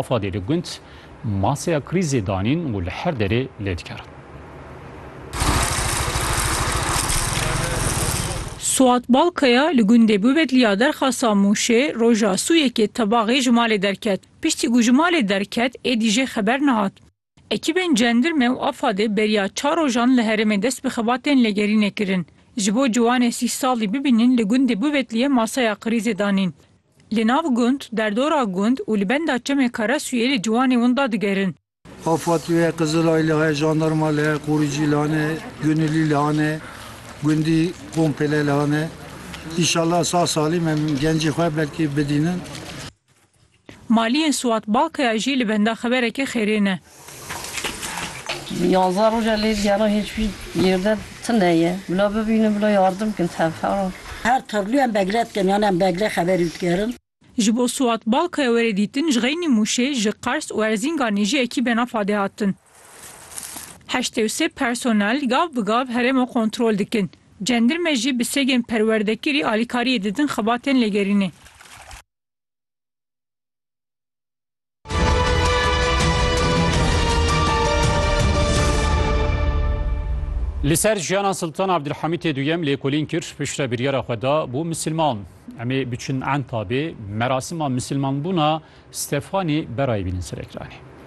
Afadê li gund maseya krîzê danîn û li her derê lê dikerin. Suat Balkaya li gundê Bubedlî ya Derxasa Mûşê roja sû yekê tebaxê ji malê derket. Piştî ku ji malê derket êdî jê xeber nehat. Ekîbên Cendirme û AFAD'ê beriya çar rojan li herêmê dest bi xebatên lêgerînê kirin. Ji bo ciwanê sî salî bibînin li gundê Buvetliyê masaya krîzê danîn. Li nav gund, derdora gund û li benda çemê Karesuyê li ciwanê winda digerin. AFAD li heye, Qizilay li heye, jandarma li heye, qorîcî li hane, gunilî li hane, gundî pompêle li hane. Înşallah sağ salîm em gencê xwe belkî bidînin. Maliyên Suat Bakiya jî li benda xeberekî xêrê ne. Yanzdeh roj e lê diyara hêç wî yerde tune ye. Bila bibînin, bila yardim bikin tevheran. Her tirlû em begre dikin yan em begre xeberî dikerin. Ji bo Suat Bakiya were dîtin ji Xeynî Mûşê, ji Qers û Erzînganê jî ekî bena fadê hatin. Heştê û sê personel gav bi gav herêma kontrol dikin. Cendirme jî bi sêgên perwerdekirî alîkariyê didin xebatên lêgerînê. Li ser jiyana Siltan Abdulhamîtê duyem lêkolîn kir piştre biryara xwe da bû misilman. Em ê biçin Entabê merasima misilmanbûna Stefanî berayî bînin Serekiranê.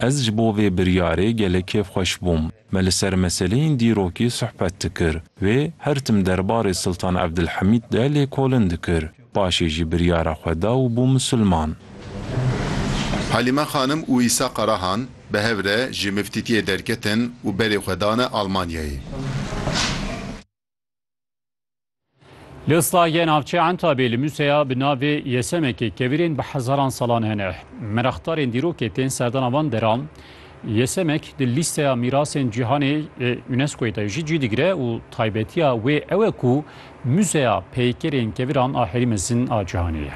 Ez ji bo vê biryarê gelek kêfxweş bûm. Me li ser meseleyên dîrokî suhbet dikir. Wê her tim derbarê Siltan Evdilhemîd de lêkolin dikir. Paşê jî biryara xwe da û bû misilman. Halîme Xanim û Îsa Karahan bi hev re ji miftîtiyê derketin û berê xwe dane Almanyayê. Li Islahiye navçeya Entabê li museya bi navê Yesemekê kevirên bi hezaran salan hene. Meraqdarên dîrokê tên serdana van deran. Yesemek di lîsteya mîrasên cîhanê ê UNESCO'yê de jî cî digire û taybetiya wê ew e ku muzeya peykerên keviran a herî mezin a cîhanê ye.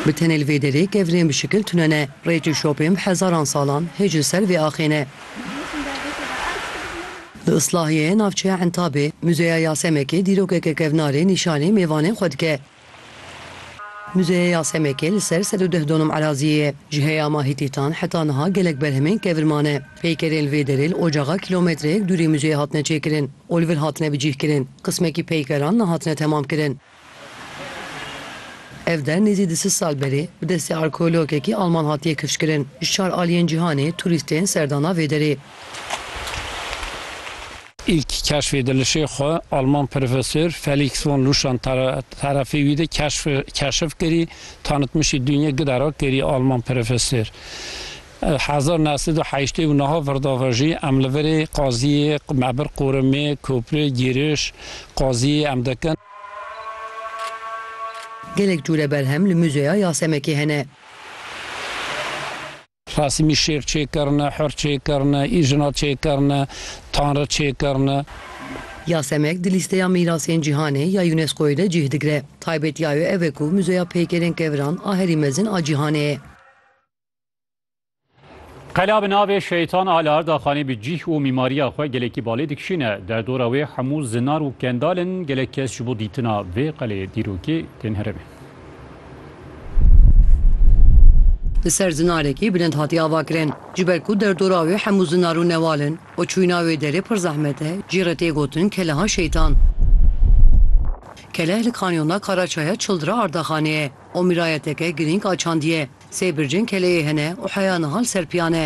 Bi tenê li vê derê kevirên bi şikil tune ne. Rêç û şopên bi hezaran salan hêj li ser vê axê ne. Di Islahiye ye navçeya Entabê, Muzeya Yasemekê dîrokeke kevnarê nîşanî mêvanên xwe dike. Muzeya Yasemekê li ser sed û deh donum eraziyê ye. Ji heyama Hîtîtan heta niha gelek berhemên kevir mane. Peykerên li vê derê li ocaxa kîlometreyek dûrî muzeyê hatine çêkirin û li vir hatine bicîhkirin. Qismekî peykeran nehatine temamkirin. Ev der nêzî di sid sal berê bi destê arkeologekî Alman hatiye kifşkirin. Ji çar aliyên cîhanê turîst tên serdana vê derê. Îlk keşfê dilişê xwe Alman profesor Felix von Luschan terefê wî de keşf keşif kirî, tanitmişî Dünye Gidera kirî Alman profesor. Hezar neh sed û heştê û niha virda ve jî em li virê qaziyê me bir qorumê, kopri, giriş, qaziyê em dikin. Gelek cure berhem li Muzeya Yasemekê hene. Rasimî şêx çêkirine, hur çêkirine, îjina çêkirine, tanri çêkirine. Yasemek di lîsteya mîrasên cîhanê ya UNESCO'yê de cih digire. Taybetiya wê ev e ku muzeya pêkêrên keviran a herî mezin a cîhanê ye. Qela bi navê Şeytan a li Ardaxanê bi cîh û mîmariya xwe gelekî balê dikişîne. Derdora wê hemû zinar û kendal in. Gelek kes ji bo dîtina vê qelê dîrokê tên herêmê. Li ser zinarekî bilind hatiye avakirin. Ji ber ku derdora wê hemû zinar û newal in û çûyîna wê derê pir zehmet e, cî re tê gotin Keleha Şeytan. Keleh li kanyona Karaçaya Çildira Ardaxanê ye. û mîrayeteke girîng a çandiye. Sê bircên keleyê hene û heya niha li ser piyan e.